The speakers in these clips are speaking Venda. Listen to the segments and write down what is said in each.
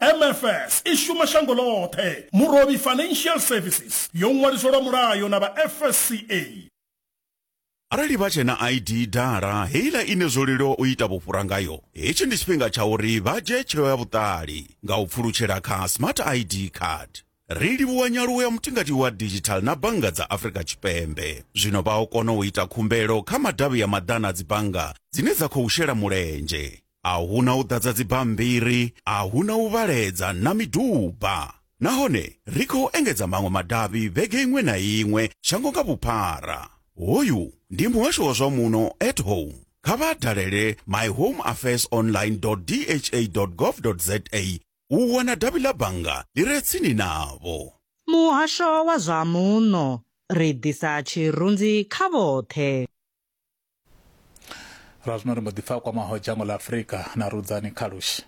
MFS i shuma shango ḽoṱhe. Murovhi Financial Services yo ṅwaliswa lwa mulayo na vha FSCA. Arali vha tshe na ID dala, heiḽa ine zwo leluwa u ita vhufhura ngayo, hetshi ndi tshifhinga tsha uri vha dzhie tsheo ya vhuṱali nga u pfulutshela kha Smart ID Card. Ri livhuwa nyaluwo ya mutingati wa digital na bannga dza Afrika Tshipembe. Zwino vha o kona u ita khumbelo kha madavhi ya maḓana a dzibannga dzine dza khou shela mulenzhe. a hu na u ḓadza dzibammbiri, a hu na u vhaledza na miduba. Nahone ri khou engedza maṅwe madavhi vhege iṅwe na iṅwe shango nga vhuphara. Hoyu ndi muhasho wa zwa muno at home. Kha vha dalele myhomeaffairsonline.dha.gov.za u wana davhi ḽa bannga ḽi re tsini navho. Muhasho wa zwa muno, ri ḓisa tshirunzi kha vhoṱhe. lwa zwino ri mbo ḓi pfa kwamaho dzhango ḽa afurika na rudzani kha lushi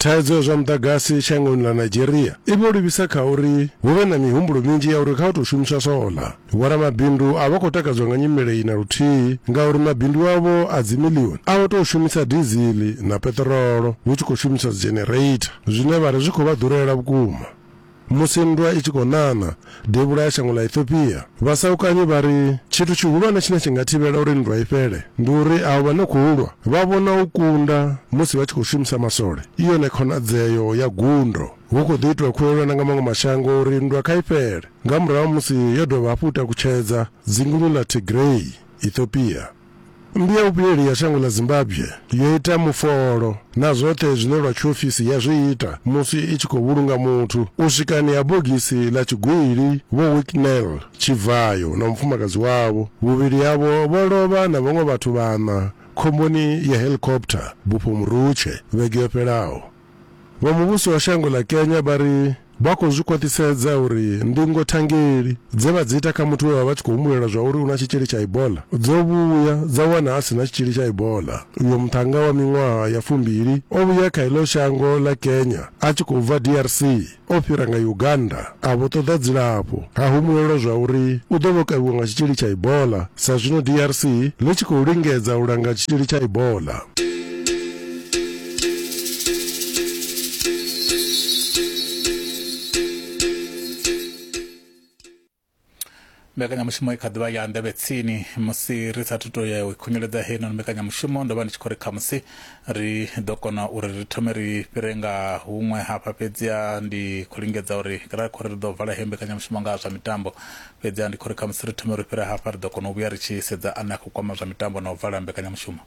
Thaidzo ya zwa muḓagasi shangoni ḽa Nigeria i vho livhisa kha uri hu vhe na mihumbulo minzhi ya uri kha hu tou shumiswa sola. Vhoramabindu a vha khou takadzwa nga nyimele iyi na luthihi ngauri mabindu avho a dzimiḽioni a vho tou shumisa diziḽi na peṱirolo hu tshi khou shumiswa dzhinereitha zwine vha ri zwi khou vha ḓurela vhukuma. Musi nndwa i tshi khou ṋaṋa devhula ya shango ḽa Ethiopia, vhasaukanyi vha ri tshithu tshihulwane tshine tshi nga thivhela uri nndwa i fhele ndi uri avho vha no khou lwa vha vhona u kunda musi vha tshi khou shumisa maswole i yone khonadzeo ya gundo. Hu khou ḓi itwa khuwelelo na nga maṅwe mashango uri nndwa kha i fhele nga murahu ha musi yo dovha hafhu u takutshedza dzinguni ḽa Tigray, Ethiopia. Mmbi ya vhuvhuyeli ya shango ḽa Zimbabwe yo ita mufolo na zwoṱhe zwine lwa tshiofisi ya zwi ita musi i tshi khou vhulunga muthu u swikani ha bogisi ḽa tshigwili Vho Wicknell Tshivhayo na mufumakadzi wavho, vhuvhili havho vho lovha na vhaṅwe vhathu vhaṋa khomboni ya heḽikophutha bufho Murutshe vhege yo fhelaho. Vho muvhusi wa shango ḽa Kenya vha ri vha khou zwi khwaṱhisedza uri ndingo thangeli dze vha dzi ita kha muthu we vha vha tshi khou humbulela zwa uri u na tshitzhili tsha Ebola dzo vhuya dza wana a si na tshitzhili tsha Ebola. Uyo muṱhannga wa miṅwaha ya fumbili o vhuya kha iḽo shango ḽa Kenya a tshi khou bva DRC. o fhira nga Uganda a vho ṱoḓa dzilafho. Ha humbulelwa zwa uri u ḓo vha o kavhiwa nga tshitzhili tsha Ebola sa zwino DRC ḽi tshi khou lingedza u langa tshitzhili tsha Ebola. mbekanyamushumo i kha ḓivha ya nḓevhe tsini musi ri sathu to ya u khunyeledza heinoni mbekanyamushumo ndo vha ndi tshi khou ri khamusi ri ḓo kona uri ri thome ri fhire nga huṅwe hafha fhedziha ndi khou lingedza uri ra khou ri ri ḓo vala heyo mbekanyamushumo nga zwa mitambo fhedziha ndi khou ri khamusi ri thome ri fhire hafha ri ḓo kona u vhuya ri tshi sedza ane a khou kwama zwa mitambo na u vala mbekanyamushumo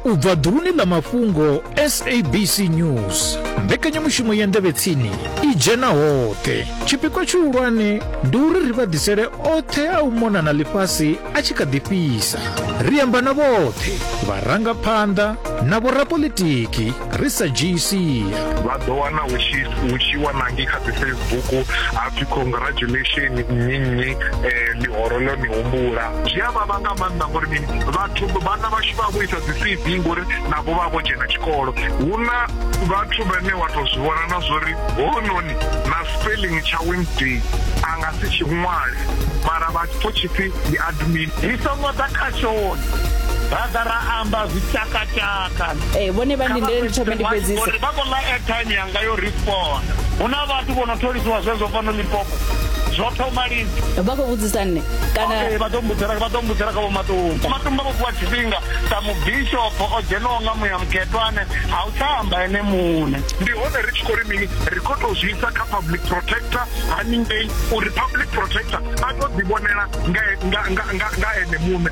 u bva ḓuluni ḽa mafhungo sabc news mbekanyamushumo ya ndevhetsini i dzhena hoṱhe tshipikwa tshihulwane ndi uri ri vha ḓisele oṱhe a u mona na ḽifhasi a tshi kha ḓi fhisa ri amba na vhoṱhe vharangaphanḓa na vhorapolitiki ri sa dzhii sia vha ḓo wana hu tshi wanangi kha dzi facebook ha pfi congratulation nnyi nnyi um ḽihoro ḽo ni humbula zwi a vhavha nga maanḓa ngori mini vhathu vhana vhashu vha vho isa dzi cv ngori navho vha vho dzhena tshikolo hu na vhathu vhane wa tou zwi vhona na zwori hounoni na spelling tsha wednesday a nga si tshi ṅwale mara vha pfo tshipfi ndi admin ri songo ḓa kha shoni ra ḓa ra amba zwi tshakatshaka kana ee vhone vha ndindele ndi thome ndi fhedzise vha khou ḽa airtime yanga yo respond hu na vhathu vho no tholisiwa zwezwo fhano limpopo zwo thoma lini vha khou vhudzisa nne kana vha ḓo mbudzela vha ḓo mbudzela kha vho matumba matumba vho fhiwa tshifhinga sa mubishopo o dzhenaho nga muya mukhetwane a u tsha amba ene muṋe ndi hone ri tshi khou ri mini ri khou tou zwi isa kha public protector haningei uri public protector a tou ḓivhonela nga ene muṋe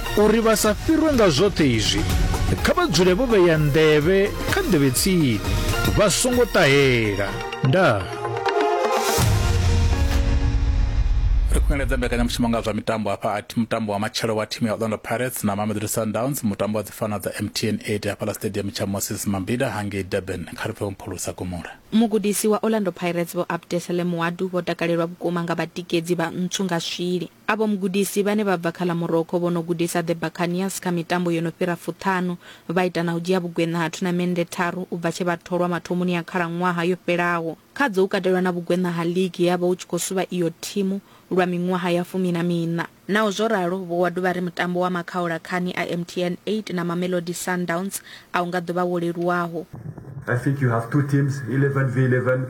Uri vha sa fhirwe nga zwoṱhe izwi, kha vha dzule vho vhea nḓevhe kha nḓevhe tsini, vha songo ṱahela. Ndaa. ri khou engedza mbekanyamushumo nga zwa mitambo hafha ati mutambo wa matshelo wa thimu ya orlando pirates na mamelodi sundowns mutambo wa dzifana dza mtn 8 hafhaḽa stadium tsha moses mambida hangei durban kha ri pfe vhomphulusa gomora mugudisi wa orlando pirates vho abdesele muwadu vho takalelwa vhukuma nga vhatikedzi vha ntswu nga swili Avho mugudisi vhane vha bva kha ḽa Morocco vho no gudisa The Buccaneers kha mitambo yo no fhira fuṱhanu, vha ita na u dzhia vhugweṋa ha thunamennde tharu u bva tshe vha tholwa mathomoni a khalaṅwaha yo fhelaho. Khadzo hu katelwa na vhugweṋa ha ligi he ha vha hu tshi khou suvha iyo thimu lwa miṅwaha ya fumi na miṋa. Naho zwo ralo, Vho Wadu vha ri mutambo wa makhaula khani a MTN 8 na Mamelodi Sundowns a u nga ḓo vha wo leluwaho. I think you have two teams, eleven v eleven.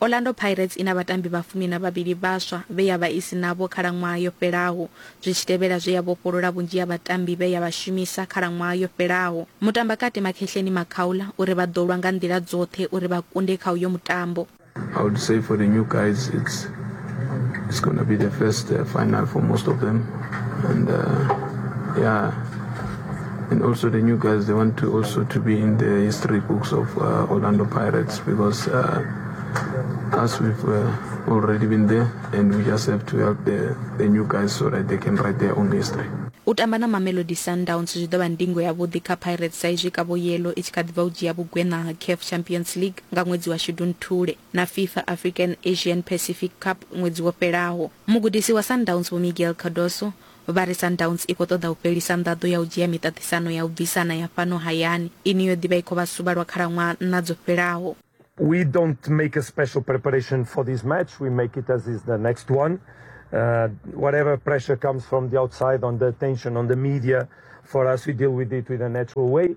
Orlando Pirates i na vhatambi vha fumi na vhavhili vhaswa vhe ya vha i si navho khalaṅwaha yo fhelaho, zwi tshi tevhela zwe ya vhofholola vhunzhi ha vhatambi vhe ya vha shumisa khalaṅwaha yo fhelaho. Mutambakati Makhehleni Makhaula u ri vha ḓo lwa nga nḓila dzoṱhe uri vha kunde kha uyo mutambo. I would say for the new guys it's it's gonna be the first uh, final for most of them and uh, yeah And also the new guys, they want to also to be in the history books of uh, Orlando Pirates because uh, us we've uh, already been there and we just have to help the, the new guys so that they can write their own history. u tamba na mamelodi sundowns zwi ḓo vha ndingo yavhuḓi kha pirates sa izwi kavho yelo i tshi kha ḓivha u dzhia vhugweṋa ha caf champions league nga ṅwedzi wa shudunthule na fifa african asian pacific cup ṅwedzi wo fhelaho mugudisi wa sundowns vho miguel cardoso Vha ri Sundowns i khou ṱoḓa u fhelisa nḓaḓo ya u dzhia miṱaṱisano ya u bvisana ya fhano hayani ine yo ḓi vha i khou vha suvha lwa khalaṅwaha nṋa dzo fhelaho. We don't make a special preparation for this match, we make it as is the next one. Uh, whatever pressure comes from the outside on the attention, on the media, for us we deal with it with a natural way.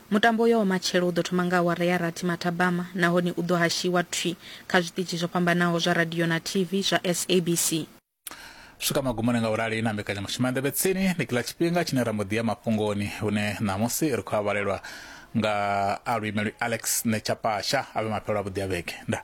Mutambo uyo wa matshelo u ḓo thoma nga awara ya rathi mathabama nahone u ḓo hashiwa thwi kha zwiṱitshi zwo fhambanaho zwa radio na TV zwa SABC. U swika magumoni nga u rali na mbekanyamushumo ya Nḓevhe Tsini, ndi kila tshifhinga tshine ra mbo ḓi ya mafhungoni hune ṋamusi ri khou a vhalelwa nga a luimelwi Alex Nechapasha. A vhe mafhelo avhuḓi a vhege. Ndaa.